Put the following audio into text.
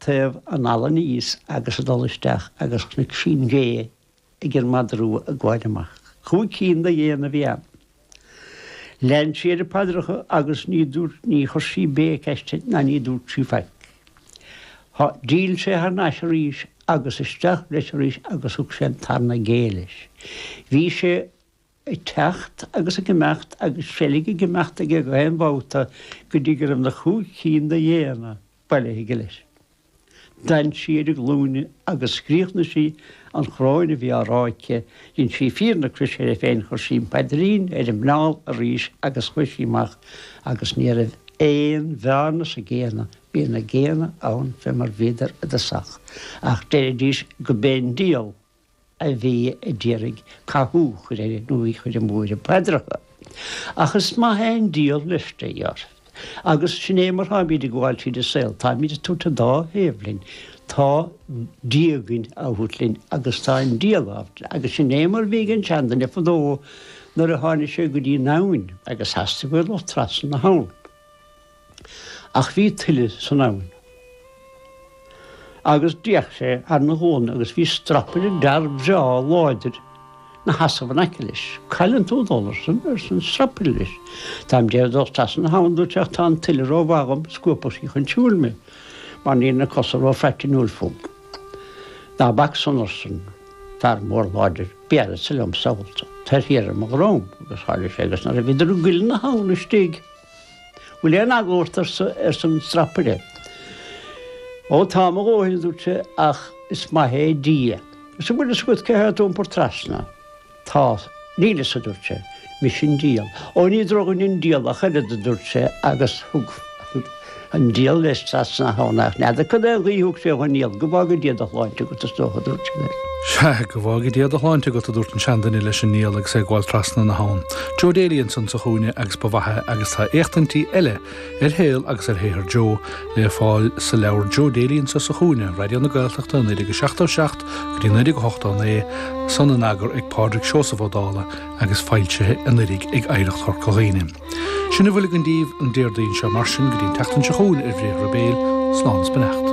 taobh an fhalla aníos agus ag dul isteach agus chonaic sí an ghé ag an madra rua ag gabháil amach. Cúig cinn de ghéanna a bhí ann. Lean sí ar a paidreacha agus ní dúirt ní chuir sí béic aisti ná ní dúirt sí faic. Há, d'fhill sé thar n-ais arís agus isteach leis arís agus thug sé an tarna gé leis. Bhí sé ag teacht agus ag imeacht agus seilg ag imeacht aige gach aon bhabhta go dtí go raibh na cúig cinn de ghéanna bailithe aige leis. D'fhan sí ar a glúine agus chríochnaigh sí an choróin a bhí á rá aici, dhein sí fíor na croise uirthi féin, chuir sí an paidrín ar a muineál arís agus chuaigh sí amach agus ní raibh aon bhearna sna géanna, bhí na géanna ann fé mar bhíodar i dtosach ach deiridís go mb'é an diabhal a bhí a d'iarraidh cathú a chur uirthi nó í a chur amú ar a paidreacha. Ach is maith é an diabhal leisce a dhéanamh. Agus sin é mar táimid ag gabháil tríd an saol, táimid ag tabhairt an dá thaobh linn, tá Dia againn á thabhairt linn agus tá an diabhal á thabhairt linn. Agus sin é mar bhí ag an seanduine fadó nuair a tháinig sé go dtí an abhainn agus theastaigh uaidh a dhul trasna na habhann. Ach bhí tuile san abhainn agus d'fhéach sé ar a ghualainn agus bhí strapaire d'fhear breá láidir 'na sheasamh in aice leis. 'Cá bhfuileann tú ag dul arsan, arsa an strapaire leis. 'Táim a d'iarraidh dul trasna na habhann dúirt sé, 'ach tá an tuile ró mhaith dhom, scuabfadh sí chun siúil mé mar níl na cosa ró phraitinniúil fúm. 'Ná bac san, arsan fear mór láidir, 'béarfadsa liom sall tú. Tar thiar ar mo dhrom. Agus tharla sé agus nuair a bhíodar i gcuilithe na habhann istigh. Bhfuil aon eagla ort arsan strapaire. Ó tá mo dhóthain a dúirt sé ach is maith é Dia. Arsa bhfuil fhios agat cé atá ad iompar trasna. Tá. Níl fhios a dúirt sé. Mise an diabhal. Ó ní drochdhuine an diabhal ach oiread a dúirt sé agus thug an diabhal leis trasna na habhann ach n'fheadar cad é an ghuí a thug sé dhon diabhal go bhfága Dia do shláinte agat is dócha a dúirt sé leis. Sea, go bhfága Dia do shláinte agat, a dúirt an seanduine leis an ndiabhal agus é ag gabháil trasna na habhann. Joe Daly ansan sa chúinne agus ba mhaith é agus tá éachtaintí eile ar shaol agus ar shaothar Joe le fáil sa leabhar Joe Daly Anseo sa Chúinne, Raidió na Gaeltachta 1977 go dtí 1989 san in eagar ag Pádraig Seosamh Ó Dála agus foilsithe anuraidh ag Oidhreacht Chorca Dhuibhne. Sin a bhfuil againn daoibh an Déardaoin seo mar sin go dtí an tseachtain seo chugainn ar Bhriathra Béil, slán is beannacht.